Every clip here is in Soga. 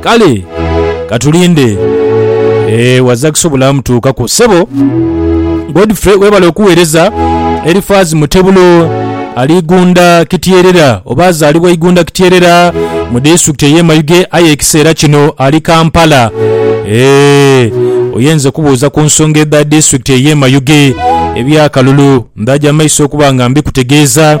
Kale katulinde ee waza kusobola mutuukaku sebo Godfrey webale okuwereza Elifaz Mutebulo ali Igunda Kityerera oba azalibwa Igunda Kityerera mu district eye Mayuge aye ekiseera kino ali Kampala ee oyenze kubuuza ku nsonga edha district eye Mayuge ebya kalulu ndaja maiso okuba nga mbikutegeeza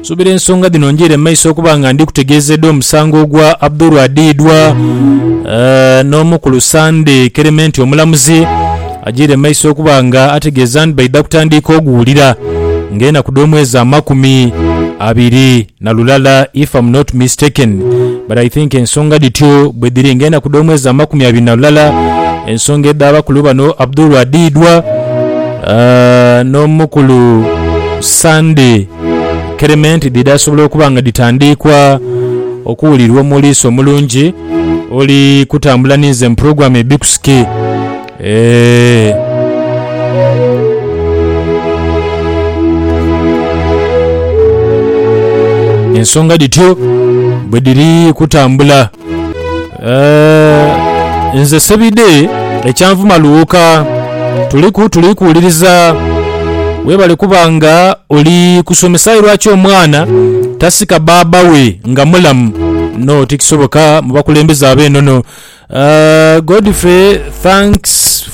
Nsuubira ensonga dhino njiire mu maiso okuba nga ndi kutegeeza edha omusango ogwa Abdul adhiidwa n'Omukulu Sande Kerementi Omulamuzi ajiire mu maiso okuba nga ategeeza nti baidha kutandiika oguwulira nga enaku dh'omwezi amakumi abiri na lulala if am not mistaken but I think ensonga dhityo bwedhiri nga enaku dh'omwezi amakumi abiri na lulala ensonga edh'abakulu bano Abdul adhiidwa n'Omukulu Sande Kerementi dhidhaasobola okuba nga dhitandiikwa okuwulirwa omuliisa omulungi oli kutambula ninze mu pulogulaamu Hibiskusi. Eeh. Ensonga dhityo bwe dhiri kutambula. Eh, nze sebide ekyanvuma luuka tuliku tuli kuwuliriza webale kuba nga oli kusomesa aye lwaki omwana tasika baaba we nga mulamu no tikisoboka mubakulembeze abenono uh, godfrey thanks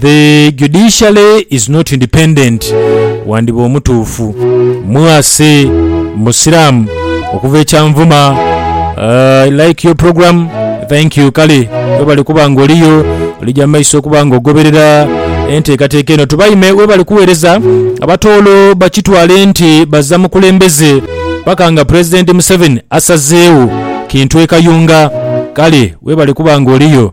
The judiciary is not independent wandiba omutuufu. Mwase musiramu okuva e kyanvuma I like your program thank you kale webale kuba nga oliyo olija mumaiso okuba nga ogoberera enteekateeka eno tubaime webale kuwereza abatoolo bakitwale nti baza mukulembeze paka nga president museveni asazeewo kintu e kayunga kale webale kuba nga oliyo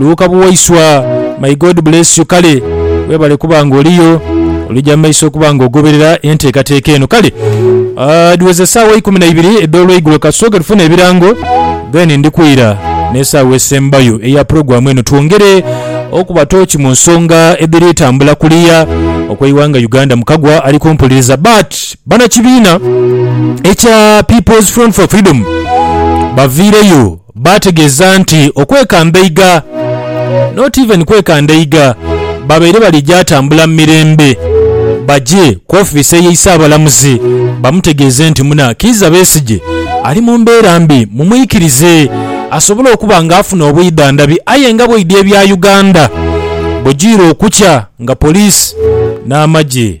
Luuka buwaiswa may God bless you kale webale kuba nga oliyo olija mumaiso okuba nga ogoberera entekateka eno kale dhiweze esawa ikumi naibiri edholweigulo katusooke tufune ebirango then ndikwiira nesawa esembayo eya program eno twongere okuba tooki munsonga edhiri tambula kuliya okweiwanga Uganda mukagwa ali kumpuliriza but banakibiina ekya people's front for freedom baviireyo Baategeeza nti okwekanda eiga, not even kwekanda eiga, babaire bali gyatambula mu mirembe bagye ku ofiisi eye Isaabalamuzi bamutegeeze nti muna Kiiza Besigye ali mu mbeera mbi mumwikirize asobole okuba nga afuna obwidhandhabi aye nga bwaidha ebya Uganda bwegyiira okukya nga police n'amagye